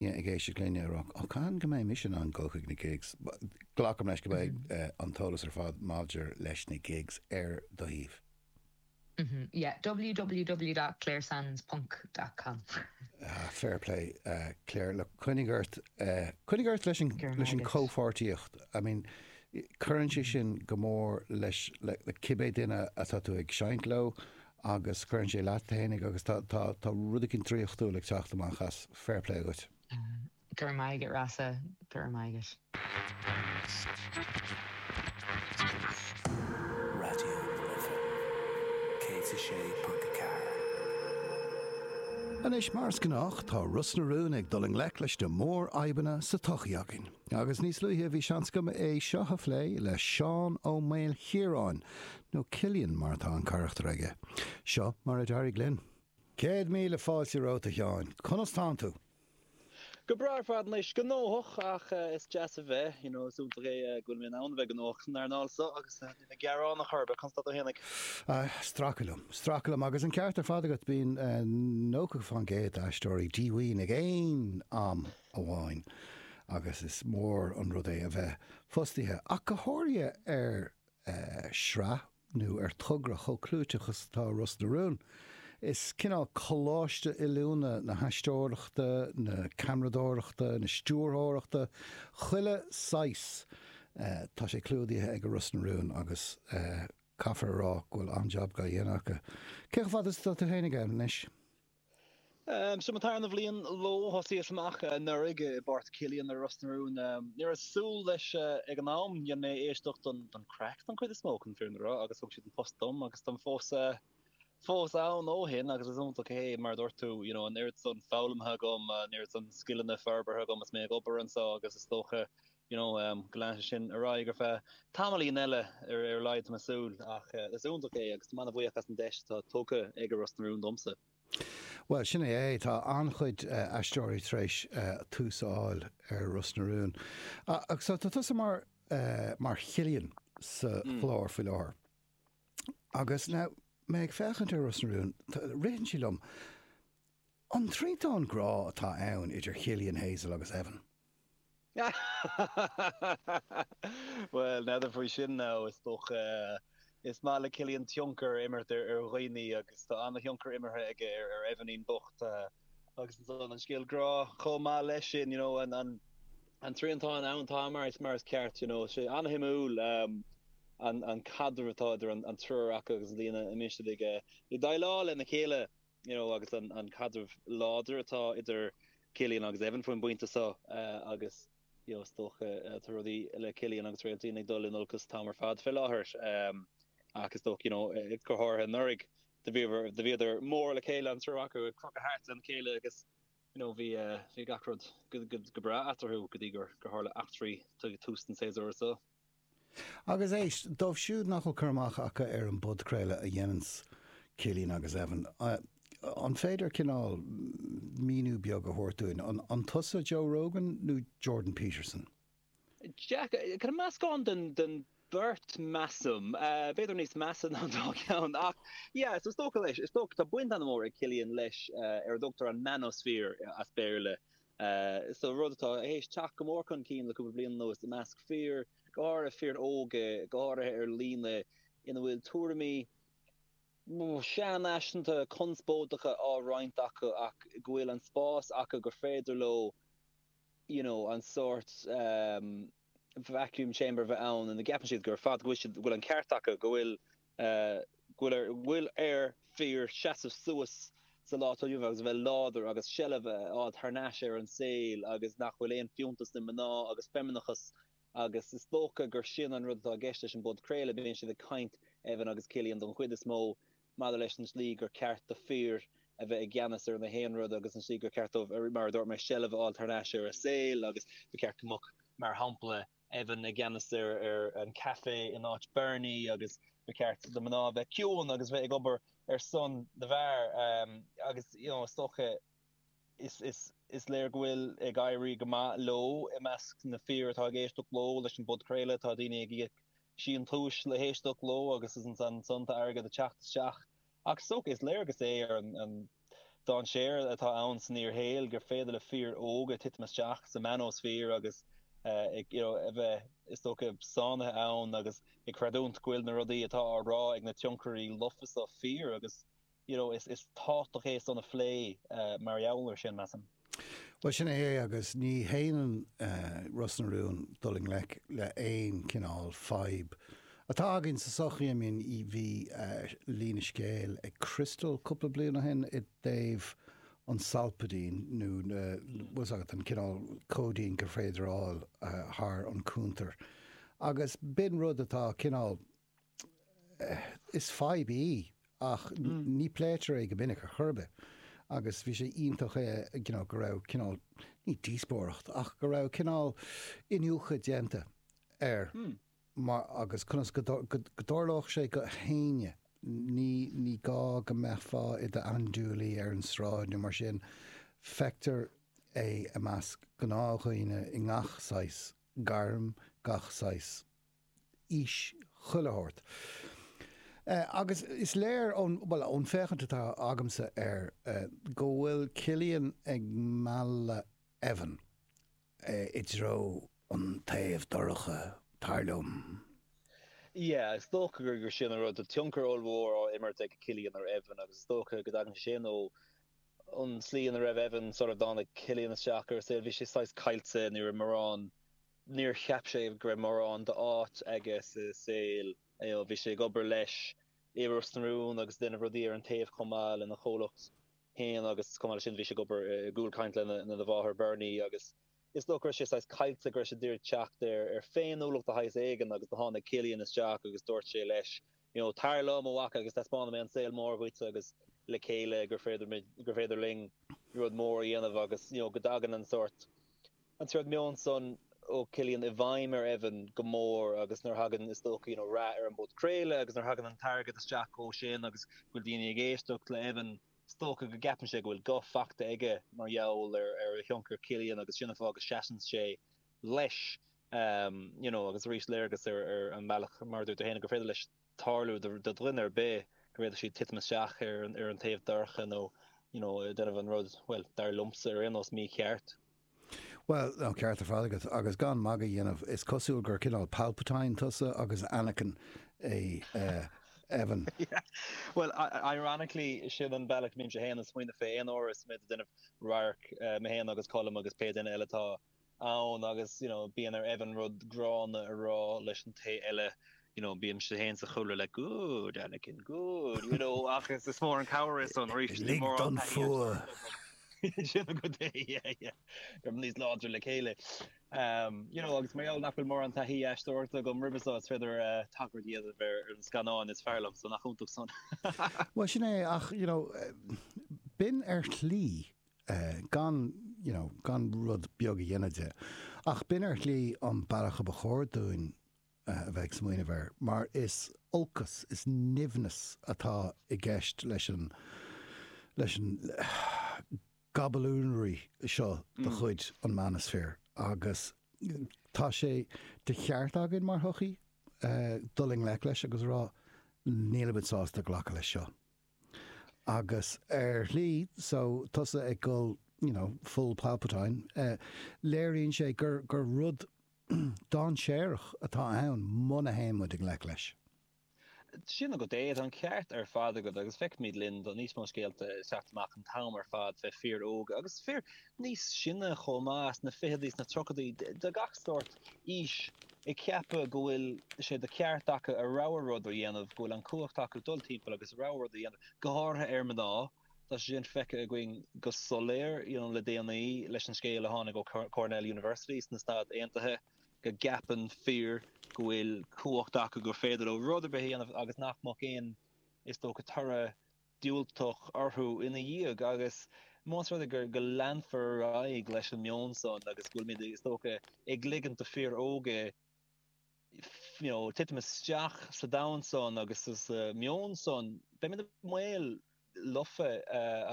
Daoine ag éisteacht linn ag rá, Ó, cathain go mbeidh mise in ann dul chuig na gigs? Glacaim leis go mbeidh an t-eolas ar fad maidir leis na gigs ar do shuíomh. www.claresands.com. Ah, fair play, Clare. Look, coinnigh ort, coinnigh ort leis an, leis an chomhpháirtíocht. I mean, cuireann sé sin go mór leis, le cibé duine atá tú ag seinnt leo agus cuireann sé leat fhéinig agus tá rud eicínt draíochtúil ag teacht amach as, fair play dhuit. Go raibh maith agat Rossa, go raibh maith agat. Radio na Life 106.4. Anois, mar is gnách, tá Ros na Rún ag dul i ngleic leis na mórfhadhbanna sa tsochaí againn. Agus níos luaithe bhí seans agam é seo a phlé le Seán Ó Maoilchiaráin, nó Cillian mar atá an carachtar aige. Seo mar a d'éirigh linn. Céad míle fáilte romhat a Sheáin. Conas tánn tú? Go breá ar fad anois. Gnóthach ach is deas a bheith, you know, is iontach é go bhfuil mé in ann a bheith gnóthach san earnáil seo agus níl mé ag gearán ar chor ar bith. Conas tá tú héinig? Ah, stracadh liom. Stracadh liom. Agus an ceart ar fad agat, bíonn nócha faoin gcéad d'aisteoirí díomhaoin ag aon am amháin agus is mór an rud é a bheith fostaithe ach go háirithe ar shraith nó ar togra chomh clúiteach is atá Ros na Rún. Is cineál coláiste oiliúna na haisteoireachta, na ceamaradóireachta, na stiúrthóireachta, chuile shaghas tá sé clúdaithe ag Ros na Rún agus caithfear a rá go bhfuil an-jab á dhéanamh acu. Cé chomh fada is atá tú héinig ann anois? Seo mo tharna bhliain leo. Thosaíos amach anuraidh i bpáirt Cillian i Ros na Rún. Ní raibh súil leis ag an am. Dhein mé éisteacht don craic don chuid is mó, chun an fhírinne a rá, agus thug siad an post dom agus táim fós ann ó shin agus is iontach é mar a dúirt tú, you know, an oiread san foghlamtha agam, an oiread san scileanna forbartha agam is mé ag obair anseo agus is dócha you know Go leanfaidh sé sin ar aghaidh ar feadh tamaillín eile ar a laghad tá mé ag súil ach is iontach é agus tá mé an-bhuíoch as an deis atá tugtha ag Ros na Rún domsa. Bhuel, sin é é. Tá an-chuid aisteoirí tar éis tús a fháil ar Ros na Rún. Ach so, tá tusa mar, mar Chillian sa chlár faoi láthair. Agus now, mé ag féachaint ar Ros na Rún, ritheann sé liom, an triantán grá atá ann idir Chillian, Hazel agus Evan? Bhuel, n'fheadar faoi sin now is dócha. Is maith le Cillian tionchar a imirt ar dhaoine agus tá an-thionchar imeartha aige ar Evanín bocht agus ansan an scéal grá chomh maith leis sin, you know, an an triantán ann, tá mar is mar is ceart, you know. Tá sé an-shuimiúil an caidreamh atá idir an triúr acu agus an tslí ina mbíonn siad ag déileáil lena chéile. you know, agus an caidreamh láidir atá idir Cillian agus Evan faoin bpointe seo agus you know is dócha tá rudaí le Cillian agus Réailtín ag dul in olcas an t-am ar fad fé láthair ach is dócha you know go háirithe anuraidh do bhíodar do bhíodar mór le chéile an triúr acu ag crochadh thart lena chéile agus you know bhí bhí gach rud go go go breá eatarthu go dtí gur gur tharla eachtraí tuas ag tús an tséasúir seo. Agus éist, dóibh siúd nach bhfuil cur amach acu ar an bpodchraoladh a dhéananns Cillian agus Evan, an féidir cineál míniú beag a thabhairt dúinn, an tusa Joe Rogan nó Jordan Peterson? Yeah, meascán den bheirt measaim, b'fhéidir níos measa ná an dá cheann. Ach yeah, so is dócha leis, is dócha, tá baint ana mhór ag Cillian leis ar a dtugtar an manosphere as Béarla, So rud atá théis teacht go mór chun cinn le cúpla bliain anuas i measc fir, go háirithe fir óga, go háirithe ar líne, ina bhfuil tuairimí sean-fhaiseanta, conspóideacha á roinnt acu ach go bhfuil an spás acu gur féidir leo you know an sórt vacuum chamber bheith ann ina gceapann siad ar fad go bhfuil siad, go bhfuil an ceart acu, go bhfuil go bhfuil ar a bhfuil ar fir seasamh suas sa lá atá inniu ann agus a bheith láidir agus seilbh a fháil thar n-ais ar an saol agus nach bhfuil aon fiúntas i mná agus feimineachas agus is dócha gur sin an rud atá i gceist leis an bpodchraoladh. Bíonn siad ag caint, Evan agus Cillian don chuid is mó, maidir leis an tslí gur cheart do fir a bheith i gceannas ar na haon rud agus an slí gur cheart dóibh, mar a dúirt mé, seilbh a fháil thar n-ais ar a saol agus ba cheart go mbeadh, mar shampla, Evan i gceannas ar an Café in áit Bernie agus ba cheart do mná bheith ciúin agus bheith ag obair ar son na bhfear agus you know is dócha is is is léir go bhfuil ag éirí go maith leo i measc na fir atá ag éisteacht leo leis an bpodchraoladh tá daoine ag íoc síntiúis le héisteacht leo agus is ansan ansan tá airgead ag teacht isteach Ach is dócha, is léargas é ar an dainséar atá ann san fhíorshaol gur féidir le fir óga titim isteach sa manosphere agus you know a bheith, is dócha, sáinnithe ann agus ag creidiúint go bhfuil na rudaí atá á rá ag na tionchairí lofa seo fíor agus you know tá sé tábhachtach é san a phlé mar gheall ar sin, measaim. Bhuel, sin é agus ní shéanann Ros na Rún dul i ngleic le haon chineál fadhb atá againn sa sochaí. I mean, bhí líne scéil ag Crystal cúpla bliain ó shin i dtaobh an Solpadeine nó bhfuil 's agat, an cineál cóidín gur féidir a fháil thar an cúntar agus b'in rud atá cineál, Is fadhb í ach ní pléitear é go minic ar chor ar bith. Agus bhí sé iontach you know go raibh cineál ní díospóireacht, ach go raibh cineál iniúchadh déanta ar mar agus conas go dtarlódh sé do éinne, ní ní gá go mbeifeá i d'andúilaí ar an sráid nó mar sin, feictear é i measc gnáthdhaoine i ngach saghas gairm, gach saghas. aois chuile shórt. Agus is léir ón, bhuel, ón bhféachaint atá agamsa air go bhfuil Cillian ag mealladh Evan i dtreo an taobh dorcha, dar liom. Yeah, is dócha gur sin an rud. Tá tionchar ollmhór á imirt ag Cillian ar Evan agus is dócha go dtagann sé sin ó an tslí ina raibh Evan sular dtáinig Cillian isteach ar an saol. Bhí sé saghas caillte, ní raibh morán Níor cheap sé go raibh mórán d'áit aige sa saol. Bhí sé ag obair leis i Ros na Rún agus ag déanamh rudaí ar an taobh chomh maith lena chomhlacht féin agus chomh maith leis sin bhí sé ag obair i gCúl Caint lena mháthair Bernie agus is dócha go raibh sé saghas caillte go raibh sé ag iarraidh teacht ar féiniúlacht de shaghas éigin agus do tháinig Cillian isteach agus dúirt sé leis you know tar liom a mhac agus taispeánfaidh mé an saol mór dhuit agus le chéile gur féidir muid gur féidir linn rud mór a dhéanamh agus you know go dtagann an sórt an sórt meon san ó Chillian i bhfeidhm ar Evan go mór agus nuair thagann is dócha you know rath ar an bpodchraoladh agus nuair thagann an t-airgead isteach ó sin agus go bhfuil daoine ag éisteacht le Evan is dócha go gceapann sé go bhfuil guth faighte aige mar gheall ar ar thionchar Chillian agus sin an fáth go seasann sé leis you know agus arís léargas ar an mbealach mar a dúirt tú féin gur féidir leis tarlú do dhuine ar bith go bhféadfadh siad titim isteach ar an ar an taobh dorcha nó you know déanamh an rud bhuel dar liomsa ar aon nós mícheart. Bhuel ó ceart ar fad agat agus gan magadh a dhéanamh is cosúil gur cineál Palpatine tusa agus Anakin é Evan. Yeah bhuel ironically sin an bealach a mbímse féin ag smaoineamh fé aon uair is mé ag déanamh radharc mé féin agus Colm agus pé duine eile atá ann agus you know bíonn ar Evan rud gránna a rá leis an té eile you know bímse féin sa chúlra le good Anakin good you know ach is is mór an cabhair san yeah yeah go raibh níos láidre le chéile um you know agus mar gheall nach bhfuil mórán taithí aisteoireachta agam roimhe seo so is féidir uh tagairt a dhéanamh ar na scannáin is fearr liom so nach iontach san. Bhuel sin é ach you know b'in ar shlí gan rud beag a dhéanamh de. Ach b'in ar shlí an bealach a ba chóir dúinn a bheith ag smaoineamh air, mar is olcas, is nimhneas atá i gceist leis an gaballonry seo de chuid an manosphere agus tá sé de cheart againn mar shochaí dul i ngleic leis agus a rá, níl muid sásta glacadh leis seo. Agus ar shlí, so, tusa ag dul you know full Palpatine, léiríonn sé gur gur rud dainséarach atá ann muna théann muid i ngleic leis. Sin agat é, tá an ceart ar fad agat agus feicimid i bhfad níos mó scéalta ag teacht amach an t-am ar fad faoi fir óga agus fir níos sine chomh maith, sna ficheadaí, sna tríochadaí, de gach sórt aois, ag ceapadh go bhfuil sé de cheart acu a rogha rud a dhéanamh, go bhfuil an chumhacht acu dul timpeall agus a rogha rud a dhéanamh, go háirithe ar mhná. Tá sé sin feicthe againn go soiléir you know le déanaí leis an scéal a tháinig ó Cornell University sna Stáit Aontaithe go gceapann fir go bhfuil cumhacht acu gur féidir leo rud ar bith a dhéanamh agus nach mbeadh aon is dócha toradh diúltach orthu ina dhiaidh agus más rud é go leanfar ar aghaidh leis an meon san agus go bhfuilmid is dócha ag ligint do fir óga you know titim isteach sa domhan san agus sa meon san beimid i mbaol lofa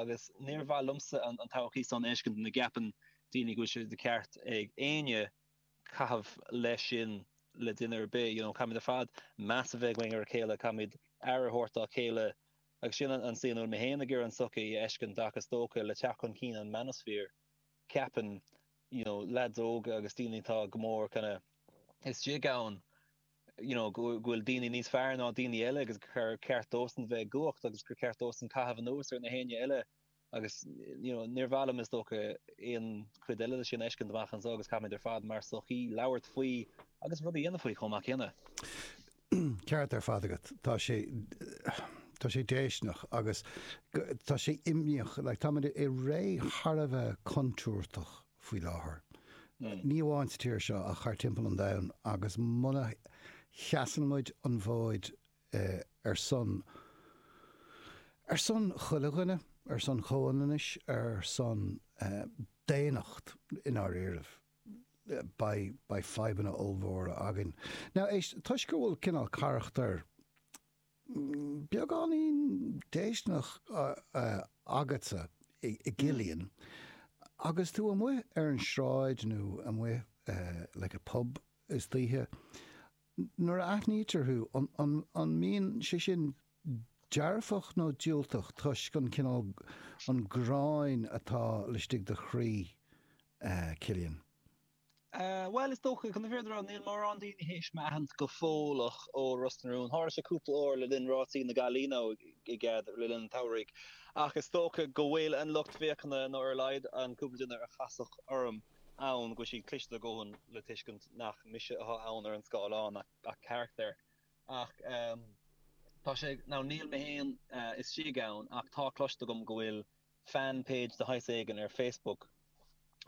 agus níor mhaith liomsa an todhchaí san a fheiscint ina gceapann daoine go bhfuil sé de cheart ag éinne caitheamh mar sin le duine ar bith. You know caithfimid ar fad meas a bheith againn ar a chéile, caithfimid aire a thabhairt dá chéile agus sin an slí ina bhfuil mé féin ag iarraidh an tsochaí a fheiscint ach is dócha le teacht chun cinn an manosphere ceapann you know lads óga agus daoine atá go mór kind of istigh ann you know go bhfuil daoine níos fearr ná daoine eile agus gur ceart dósan bheith i gcumhacht agus gur ceart dósan caitheamh anuas ar gach éinne eile Agus you know níor mhaith liom is dócha aon chuid eile de sin a fheiscint amach anseo agus caithfimid ar fad mar sochaí labhairt faoi agus rud a dhéanamh faoi chomh maith céanna. Ceart ar fad agat. Tá sé Tá sé déistineach agus tá sé imníoch like táimid i ré thar a bheith contúirteach faoi láthair. Mm. Ní amháin sa tír seo ach fud timpeall an domhain agus muna sheasann muid an fód ar son, ar son chuile dhuine, ar son comhionannais, ar son daonnacht i ndáiríre. Beidh, beidh fadhbanna ollmhóra againn. Now, éist, toisc go bhfuil cineál carachtar beagáinín déistineach agatsa i gCillian agus tú amuigh ar an sráid nó amuigh like i bpub istoíche, Nuair a aithnítear thú, an mbíonn sé sin dearfach nó diúltach toisc an cineál, an ghráin atá laistigh do chroí, Cillian? Bhuel, is dócha, chun na fírinne a rá, níl mórán daoine théis mé a aithint go fóilleach ó Ros na Rún. Tharla sé cúpla uair le linn rásaí na Gaillimhe, OK, le linn an tsamhraidh, ach is dócha go bhfuil an lucht féachana, nó ar a laghad an cúpla duine a chas orm, ann go bhfuil siad cliste a dhóthain le tuiscint nach mise atá ann ar an scáileán ach carachtar ach tá sé nó níl mé féin istigh ann ach tá cloiste agam go bhfuil fan page de shaghas éigin ar Facebook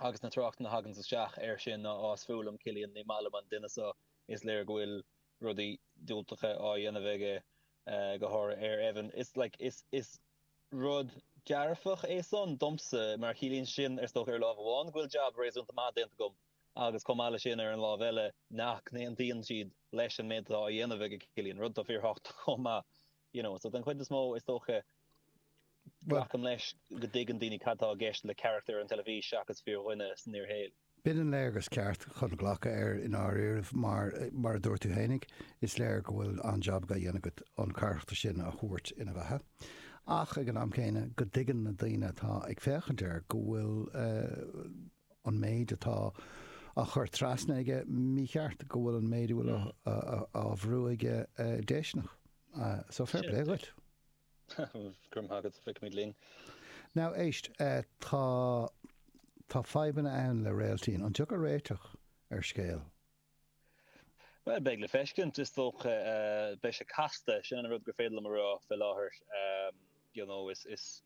agus na tráchtanna a thaganns isteach air sin ná is fuath liom Cillian ní maith liom an duine seo is léir go bhfuil rudaí diúltacha á dhéanamh aige Eh, go hur ar Aoibheann. Is like, is, is rud dearfach é san, domsa, mar ciallaíonn sin, is dócha, ar lámh amháin, go bhfuil jab réasúnta maith déanta agam agus chomh maith le sin, ar an lámh eile, nach n-aontaíonn siad leis an méid atá á dhéanamh ag Cillian, rud atá fíorthábhachtach chomh maith, you know. So, den chuid is mó, is dócha, glacaim leis go dtuigeann daoine cad atá i gceist le carachtar ar an teilifís seachas fíordhuine san fhíorshaol. B'in an léargas ceart chun glacadh air i ndáiríribh mar, mar a dúirt tú fhéinig, is léir go bhfuil an-jab á dhéanamh agat an carachtar sin a thabhairt ina bheatha ach ag an am céanna go dtuigeann na daoine atá ag féachaint air go bhfuil an méid atá á chur trasna aige mícheart, go bhfuil an méid a bhfuil á bhrú aige déisteanach. So, fair play dhuit. Grma agat, feicfimid linn. Now éist, tá, tá fadhbanna ann le Réailtín. An dtiocfaidh réiteach ar an scéal? Bhuel, beidh le feiscint. Is dócha, beidh sé casta, sin an rud gur féidir liom a rá fé láthair. You know, is, is.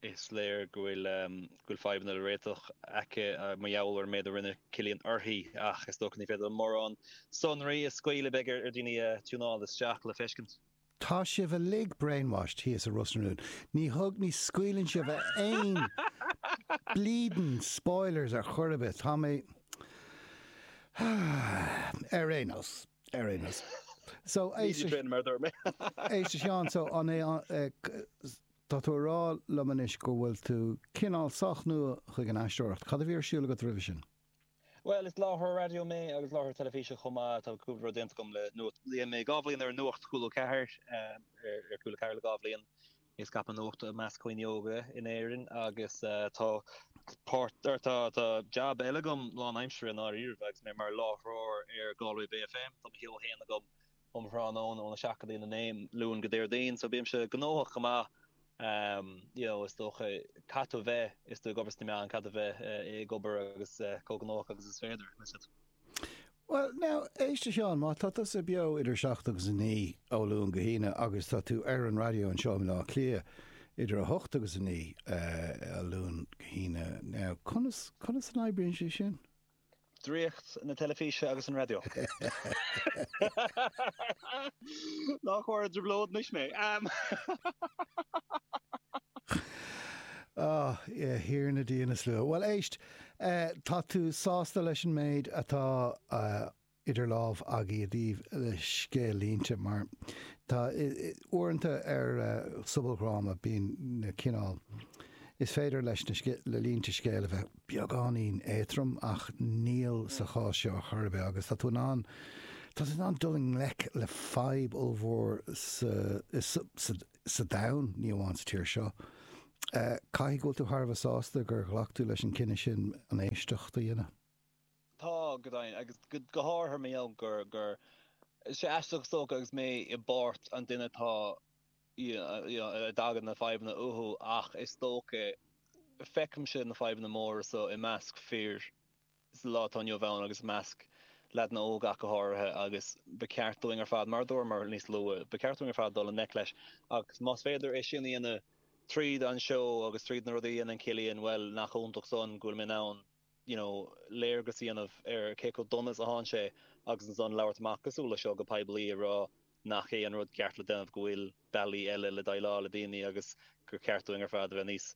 Is léir go bhfuil fadhbanna le réiteach aici mar gheall ar an méid a rinne Cillian uirthi ach is dócha ní féidir liom mórán sonraí a scaoileadh beidh ar dhaoine tiúnáil isteach le feiscint. Tá sibh uilig brainwashed thíos i Ros na Rún. Ní thug, ní scaoileann sibh aon bleedin spoilers ar chor ar bith. Tá mé. Ar aon nós. Ar aon nós. So, Ní éist, sin mar dúirt mé. éist a Sheáin, so an é an- eh, c- s- tá tú a rá liom anois go bhfuil tú cineál sách nua chuig an aisteoireacht. Cad a bhí ar siúl agat roimhe sin? Bhuel, is láithreoir raidió mé agus láithreoir teilifíse chomh maith. Tá cúpla rud déanta agam le nuacht. Bhí mé dhá bhliain ar nuacht Cúla Ceathair, eh, ar, ar Cúla Ceathair le dhá bhliain. Ag scaipeadh nuachta i measc daoine óga in Éirinn agus tá jab eile agam lán aimsire i ndáiríre agus mé mar láithreoir ar Galway Bay FM. Tá mo sheó féin agam um thráthnóna ón 7:00 go dtí'n 9:00, Luan go Déardaoin, so bímse gnóthach go maith you know is dócha. Caithfidh tú a bheith is tú ag obair sna meáin, caithfidh tú a bheith ag obair agus chomh gnóthach agus is féidir. Bhuel, now, éist a Sheáin, má tá tusa beo idir a seacht agus a naoi ó Luan go hAoine agus tá tú ar an raidió anseo in Áth Cliath idir a hocht agus a naoi ó Luan go hAoine, now, conas, conas a oibríonn sé sin? Draíocht na teilifíse agus an raidió. Nach bhfuair i dtrioblóid anois mé. Ahem! Ah, a Thiarna Dia na Slua. Bhuel, éist. Tá tú sásta leis an méid atá idir lámha agaibh i dtaoibh scéal-línte mar tá uaireanta ar sobaldhráma bíonn na cineál is féidir leis na línte scéil a bheith beagáinín éatrom ach níl sa chás seo chor ar bith agus tá tú in ann tá tú in ann dul i ngleic le fadhb ollmhór sa sa domhan, ní amháin sa tír seo. Caithfidh go bhfuil tú thar a bheith sásta gur ghlac tú leis an cinneadh sin an éisteacht a dhéanamh. Tá, go deimhin, agus go háirithe mar gheall gur, tá sé aisteach is dócha agus mé i bpáirt an duine atá you know a dtagann na fadhbanna uathu ach is dócha feicimse na fadhbanna móra so i measc fir, sa lá atá inniu ann agus i measc leaideanna óga ach go háirithe agus ba cheart dúinn ar fad, mar a dúramar níos luaithe, ba cheart dúinn ar fad dul i ngleic leis agus más féidir é sin a dhéanamh tríd an seó agus tríd na rudaí a dhéanann Cillian, bhuel, nach iontach san go bhfuil mé in ann, you know, léargas a dhéanamh ar cé chomh dona is atá sé agus ansan labhairt amach cosúil leis seo go poiblí ag rá, nach é an rud ceart le déanamh, go bhfuil bealaí eile le déileáil le daoine agus gur ceart dúinn ar fad a bheith níos,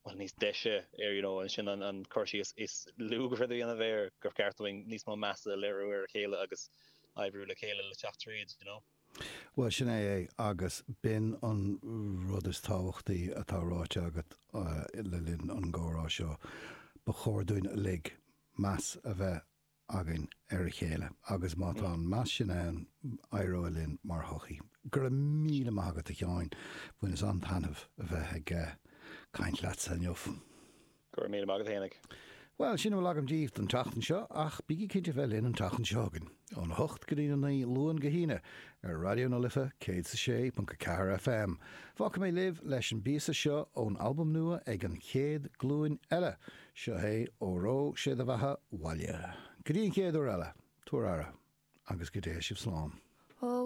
bhuel, níos deise ar, you know, ansin an cur síos is lú gur féidir a dhéanamh air, gur cheart dúinn níos mó measa a léiriú ar a chéile agus oibriú le chéile le teacht tríd, you know. Bhuel, sin é é agus b'in an rud is tábhachtaí atá ráite agat le linn an gcomhrá seo. Ba chóir dúinn uilig meas a bheith againn ar a chéile agus má tá an meas sin ann éireoidh linn mar shochaí. Go raibh míle maith agat a Sheáin, bhaineas an-taitneamh a bheith ag caint leatsa inniu. Go raibh míle maith agat a Éanna. Bhuel, sin a bhfuil agam díbh don tseachtain seo ach bígí cinnte a bheith linn an tseachtain seo chugainn, ón 8 go dtí'n 9, Luan go hAoine, ar Raidió na Life 106.4 FM. Fágfaidh mé libh leis an bpíosa seo ón albam nua ag An Chéad Glúin Eile. Seo é, Óró, sé do bheatha 'bhaile. Go dtí an chéad uair eile, tabhair aire, agus go dté sibh slán. Ó,